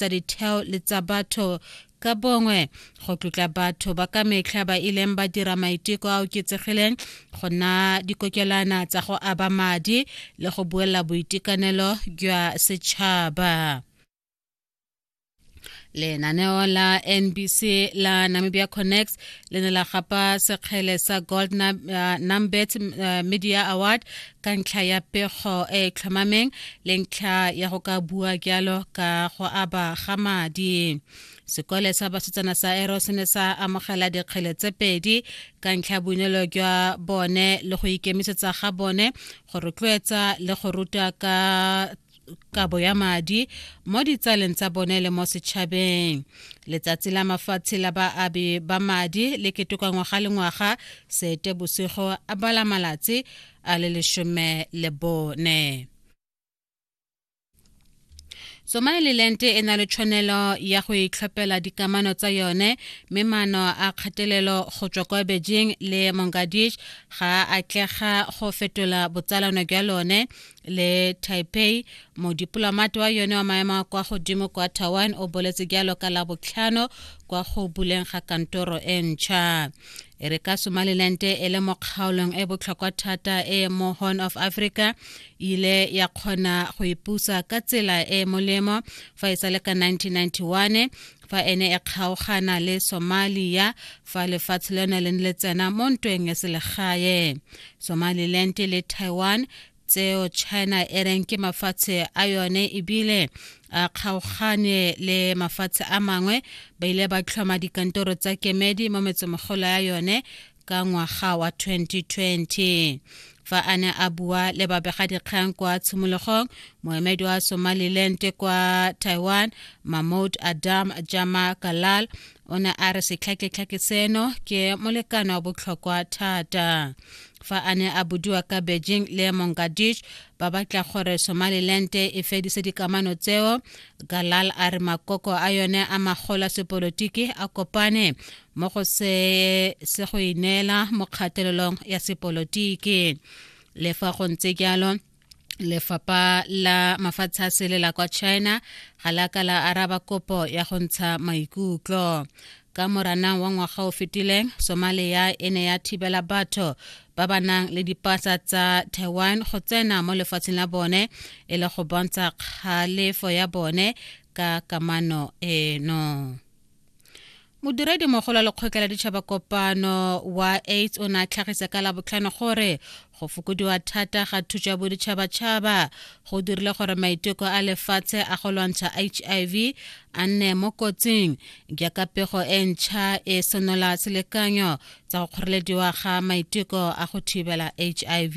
tsa ditheo le tsa batho ka bongwe go tlotla batho ba ka metlha ba ileng ba dira maiteko a oketsegileng go na dikokelana tsa go aba madi le go buela boitekanelo jwa setšhaba lenaneo la nbc la namibia connects le ne la gapa sekgele sa gold uh, numbet uh, media award ka ntlha ya pego e e tlhomameng le ntlha ya go ka bua jalo ka go aba ga madi sekole sa basetsana sa ero se ne sa amogela dikgele tse pedi ka ntlha boineelo jwa bone le go ikemisetsa ga bone go rotloetsa le go ruta ka kabo ya madi mo ditsaleng tsa bone le mo setšhabeng letsatsi la mafatshe la baabi ba madi le ketoka ngwaga le ngwaga sete bosigo a bala malatsi a le lesome le bone somaliland e na le tshwanelo ya go itlhophela dikamano tsa yone mme maano a kgatelelo go tswa kwa beijing le mongadish ga a tlega go fetola botsalano jwa lone le taipei modipolomate wa yone wa maemo a kwa godimo kwa taiwan o boletse jalo ka la botlhano kwa go buleng ga kantoro e ntšha e re ka somaliland e le mo kgaolong e botlhokwa thata e mo horn of africa ile ya kgona go ipusa ka tsela e molemo fa e sa le ka 1991 fa ene e kgaogana le somalia fa lefatshe lone le le tsena mo ntweng ya selegae somaliland le taiwan tseo china e reng ke mafatshe a yone ebile a kgaogane le mafatshe a mangwe ba ile ba tlhoma dikantoro tsa kemedi mo metsemogolo ya yone ka ngwaga wa 2020 fa a ne a bua le babegadikgang kwa tshimologong moemedi wa somaliland kwa taiwan mahmoud adam jama kalal o ne a re setlhaketlhake seno ke molekano wa botlhokwa thata fa a ne a budiwa ka beijing le mongadish ba batla gore somaliland e fedise dikamano tseo galal a re makoko a yone a magola sepolotiki a kopane mo go se se go ineela mo kgatelelong ya sepolotiki le fa go ntse jalo lefapha la mafatshe a sele la kwa china ga la ka la araba kopo ya go ntsha maikutlo ka moranang wa ngwaga o fetileng somalia e ne ya thibela batho ba ba nang le dipasa tsa taiwan go tsena mo lefatsheng la bone e le go bontsha kgalefo ya bone ka kamano eno modiredi mogolo wa lekgotla la ditšhaba kopano wa aids o ne a tlhagisa ka labotlhano gore go fokodiwa thata ga thuso ya boditšhabatšhaba go dirile gore maiteko a lefatshe a go lwantsha hiv a nne mo kotsing jaaka pego e ntšha e senola selekanyo tsa go kgorelediwa ga maiteko a go thibela hiv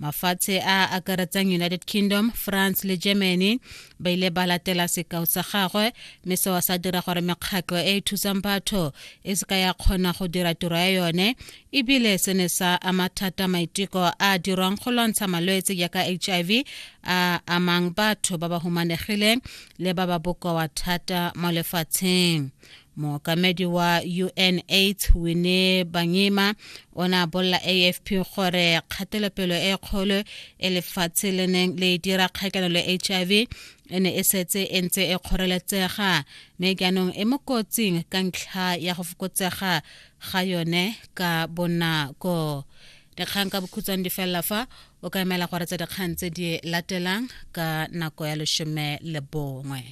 mafatshe a a akaretsang united kingdom france le germany ba ile ba latela sekao sa gagwe mme seo sa dira gore mekgatlho e e thusang batho e se ka ya kgona go dira tiro ya yone ebile se ne sa ama thata maiteko a dirwang go lwantsha malwetse jaaka hiv a amang batho ba ba humanegileng le ba ba bokoa thata mo lefatsheng mookamedi wa unaids wine bangima o ne a bolela afp gore kgatelopelo e kgolo e lefatshe le neng le dira kgakanelo le h i v e ne e setse e ntse e kgoreletsega mme jaanong e mo kotsing ka ntlha ya go fokotsega ga yone ka bonako dikgang ka bokhutshwane di felela fa o ka emela gore tsa dikgang tse di latelang ka nako ya lesome le bongwe